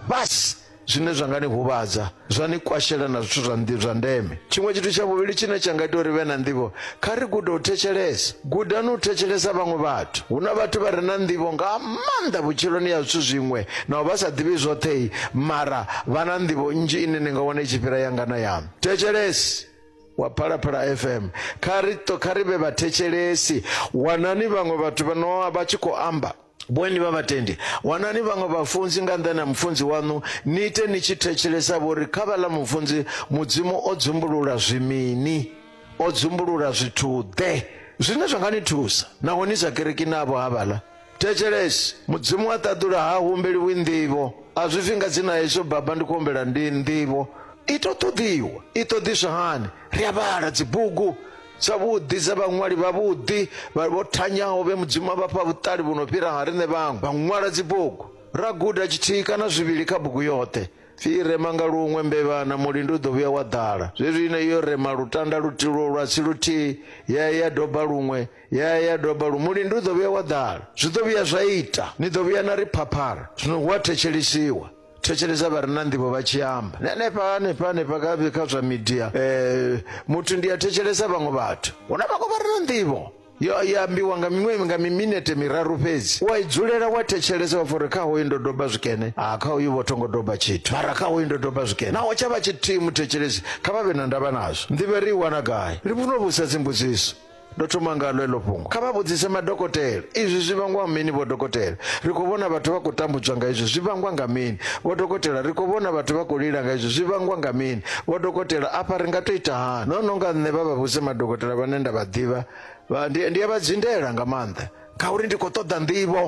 Basi, zwine zwa nga ni huvhadza, zwa ni kwashela na zwithu zwa ndi zwa ndeme. Tshiṅwe tshithu tsha vhuvhili tshine tsha nga ita uri vhe na nḓivho, kha ri gude u thetshelesa. Gudani u thetshelesa vhaṅwe vhathu. Hu na vhathu vha re na nḓivho nga maanḓa vhutshiloni ya zwithu zwiṅwe, naho vha sa ḓivhi zwoṱhe, mara vha na nḓivho nnzhi ine ni nga wana i tshi fhira yanga na yaṋu. Thetshelesi wa Phalaphala FM, kha ri, kha ri vhe vhathetshelesi. Wanani vhaṅwe vhathu vha no vha tshi khou amba. Bweni vha vhatendi, wanani vhaṅwe vhafunzi nga nnḓani ha mufunzi waṋu, ni ite ni tshi thetshelesa vho ri, Kha vhaḽa mufunzi Mudzimu o dzumbulula zwi mini? O dzumbulula zwithu-ḓe zwine zwa nga ni thusa naho ni sa kereki navho havhaḽa? Thetshelesi, Mudzimu a ṱaḓula ha humbeliwi nḓivho, a zwi pfi nga dzina Yesu, Baba, ndi khou humbela ndi nḓivho. I tou ṱoḓiwa. I ṱoḓiswa hani? Ri a vhala dzibugu. Tshavhuḓi tsha vhaṅwali vhavhuḓi vho thanyaho vhe Mudzimu a vha fha vhuṱali vhu no fhira ha riṋe vhaṅwe vha ṅwala dzibugu. Ra guda tshithihi kana zwivhili kha bugu yoṱhe. Pfi i rema nga luṅwe, mbevha na mulindi u ḓo vhuya wa ḓala. Zwezwi ine yo rema lutanda luthihi lwo lwa si luthihi, ya ya ya doba luṅwe, ya ya ya doba luṅwe, mulindi u ḓo vhuya wa ḓala. Zwi ḓo vhuya zwa ita, ni ḓo vhuya na ri phaphara, zwino hu a thetshelesiwa. thetshelesa vha re na nḓivho vha tshi amba na hanefha hanefha hanefha kha- kha zwa midia eh, muthu ndi a thetshelesa vhaṅwe vhathu hu na vhaṅwe vha re na nḓivho yo ya ambiwa nga miṅwe nga miminete miraru fhedzi wa i dzulela wa thetshelesa wa fori kha hoyu ndo doba zwikene a kha hoyu vho thongo doba tshithu mara kha hoyu ndo doba zwikene naho tsha vha tshithihi muthetshelesi kha vha vhe na ndavha nazwo nḓivho ri i wana gai ri vhuno vhusa dzimbudziso Ndo thoma ngalo heḽo fhungo. Kha vha vhudzise madokotela. Izwi zwi vhangwa mini, Vho Dokotela? Ri khou vhona vhathu vha khou tambudzwa nga izwi. Zwi vhangwa nga mini? Vho Dokotela, Ri khou vhona vhathu vha khou lila nga izwi. Zwi vhangwa nga mini? Vho Dokotela, Afha ri nga tou ita hani? No no nga nṋe vha vha vhudze madokotela vhane nda vha ḓivha. Vha, ndi, ndi a vha dzindela nga maanḓa. Ngauri ndi khou ṱoḓa nḓivho.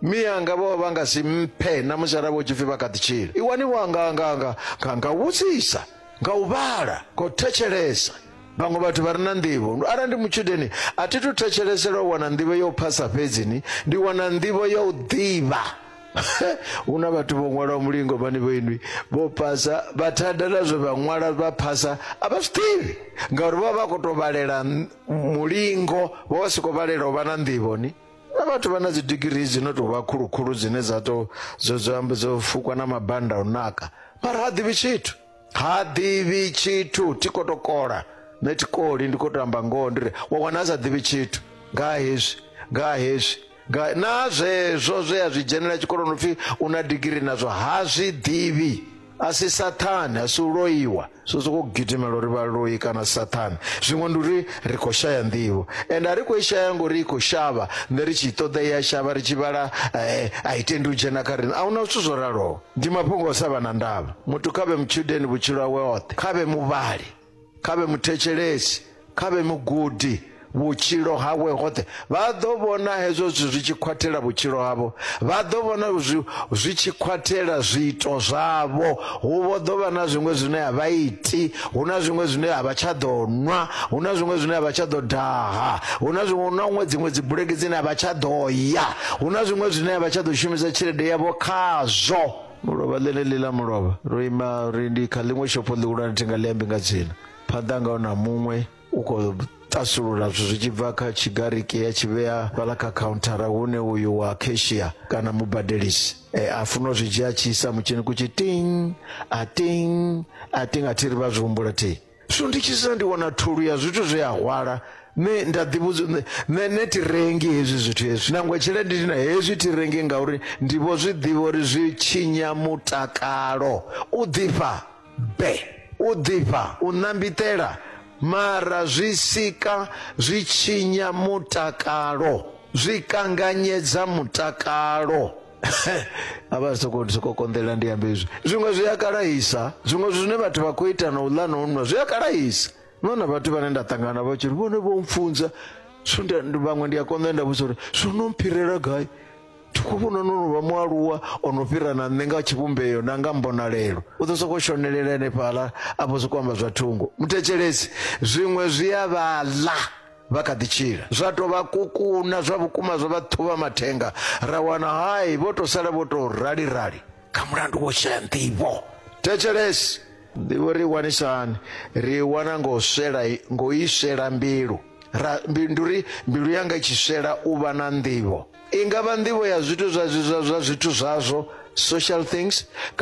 Mianga vho vha vha nga si mphe na musi arali vho tshipfi vha kha ḓi tshila. I waniwa nga, nga, nga, nga, nga u vhudzisa, nga u vhala, nga u thetshelesa. Vhaṅwe vhathu vha re na nḓivho. Arali ndi mutshudeni, a thi thu thetshelesela u wana nḓivho ya u phasa fhedzi, ni ndi wana nḓivho ya u ḓivha. hu na vhathu vho ṅwalaho mulingo vhane vho inwi vho phasa vha thada na zwe vha ṅwala vha phasa a vha zwi ḓivhi ngauri vha vha khou tou vhalela mulingo vha vha si khou vhalela u vha na nḓivho ni na vhathu vha na dzi digirii dzi no tou vha khulukhulu dzine dza to dzo dzo amba dzo fukwa na mabanda a u naka mara ha ḓivhi tshithu ha ḓivhi tshithu thi khou tou kola nṋe thi koli ndi khou tou amba ngoho ndi ri wa wana a sa ḓivhi tshithu nga ha hezwi nga ha hezwi nga na zwezwo zwe a zwi dzhenela tshikoloni upfhi u na digiri nazwo ha zwi ḓivhi a si sathane a si u loiwa so sokou gidimela uri vha loi kana sathane zwiṅwe ndi uri ri khou shaya nḓivho ende a ri khou i shaya ngori i khou shavha nṋe ri tshi i ṱoḓa i a shavha ri tshi vhala a i tendi u dzhena kha riṋe a hu na zwithu zwo raloho Ndi mafhungo o sa vha na ndavha. Muthu kha vhe mutshudeni vhutshilo hawe hoṱhe, kha vhe muvhali, kha vhe muthetshelesi, kha vhe mugudi vhutshilo hawe hoṱhe. Vha ḓo vhona hezwo zwithu zwi tshi khwathela vhutshilo havho, vha ḓo vhona zwi, zwi tshi khwathela zwiito zwavho. Hu vho ḓo vha na zwiṅwe zwine a vha iti, hu na zwiṅwe zwine a vha tsha ḓo nwa hu na zwiṅwe zwine a vha tsha ḓo daha hu na zwiṅwe na huṅwe dziṅwe dzi bulege dzine a vha tsha ḓo ya hu na zwiṅwe zwine a vha tsha ḓo shumisa tshelede yavho khazwo mulovha ḽene ḽi ḽa mulovha ro ima ri ndi kha ḽiṅwe shopho ḽihulwane thi nga ḽi ambi nga dzina phanḓa ngaho na muṅwe u khou ṱasulula zwithu zwi tshi bva kha tshigariki ya tshi vhea fhaḽa kha khauntara hune uyu wa kheshia kana mubadelisi e, a funa u zwi dzhia a tshi isa mutshini kutshi ting a ting a ting a thi ri vha zwi humbula thi so ndi tshi sina ndi wana thulu ya zwithu zwe a hwala ne nda ḓivhudza ne- ne ne thi rengi hezwi zwithu hezwi nangwe tshelede ndi na hezwi thi rengi ngauri ndi vho zwi ḓivha uri zwi tshinya mutakalo u ḓifha Be, u ḓifha, u ṋambitela, mara zwi sika zwi tshinya mutakalo, zwi kanganyedza mutakalo. A vha soko soko konḓela ndi ambe izwi zwiṅwe zwi a kalahisa zwiṅwe zwine vhathu vha khou ita na u ḽa na u nwa zwi a kalahisa no na vhathu vhane nda ṱangana navho tshiri vhone vho mfunza vhaṅwe ndi a konḓa nda vhudzisa uri zwo no mphirela gai Thukhuvhuno no no vha mualuwa o no fhira na nṋe nga tshivhumbeo na nga mbonalelo. U ḓo sokou shonelela henefhaḽa a vho sokou amba zwa thungo. Muthetshelesi, zwiṅwe zwi a vha ḽa vha kha ḓi tshila, zwa tou vha kukuna zwa vhukuma zwa vha ṱhuvha mathenga, ra wana hai vho tou sala vho tou rali-rali nga mulandu wo shaya nḓivho. Thetshelesi, nḓivho ri i wanisa hani? Ri i wana ngo swela ngo i swela mbilu ra ndi uri mbilu yanga i tshi swela u vha na nḓivho. I nga vha nḓivho ya zwithu zwa zwa zwa zwithu zwazwo, social things, kana.